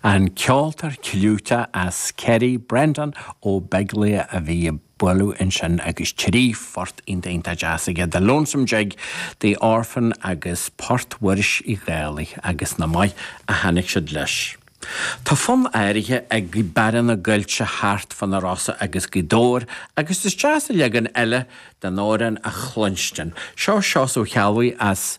An ceoltóir clúiteach as Ciarraí, Breandán Ó Beaglaoich, a bhí ag bualadh ansin agus trí phort iontach deas aige, 'The Lonesome Jig', 'The Orphan' agus 'Port Mhuiris Uí Dhálaigh', agus nach maith a tháinig siad leis. Tá fonn áirithe ag Gaoth Beara na gCoillte thart fá na Rosa agus Gaoth Dobhair agus is deas a leagan eile den amhrán a chluinstin. Seo Seosamh Mac Ceallabhuí as.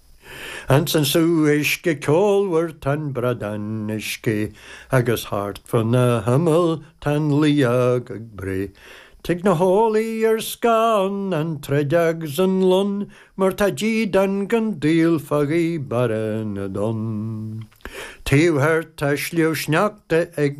Insan sruth uisce ceolmhar tá'n bradán ag sceith agus thart fa na himill tá'n liathóg ag breith. Tig na héanlaith ar scáth ann an druideog 's an lon mar tá dídean gan díol fá Ghaoth Beara na dTonn. Taobh thiar tá Sliabh Sneachta ag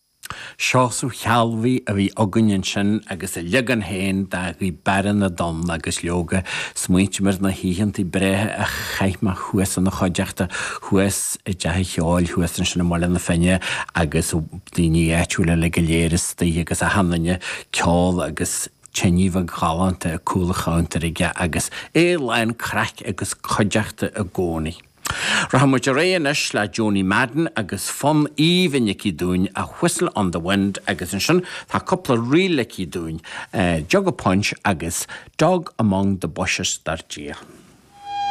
Seosamh Mac Ceallabhuí a bhí againn ansin agus a leagan féin de Ghaoth Beara na dTonn agus leoga, smaointigh mé ar na hoícheanta breátha a chaith mé thuas ina chuideachta, thuas i dteach an cheoil thuas ansin i mBaile na Finne agus daoine áitiúla uilig go léir istigh agus a sheinninn ceol agus tine bheag ghalánta i gcúl an chabhantair aige agus é lán craic agus cuideachta i gcónaí. Rachaidh muid ar aghaidh anois le Joanie Madden agus fonn aoibhinn aici dúinn, 'A Whistle on the Wind', agus ansin tá cúpla ríl aici dúinn, 'Jug of Punch' agus 'Dog Among the Bushes', dar Dia.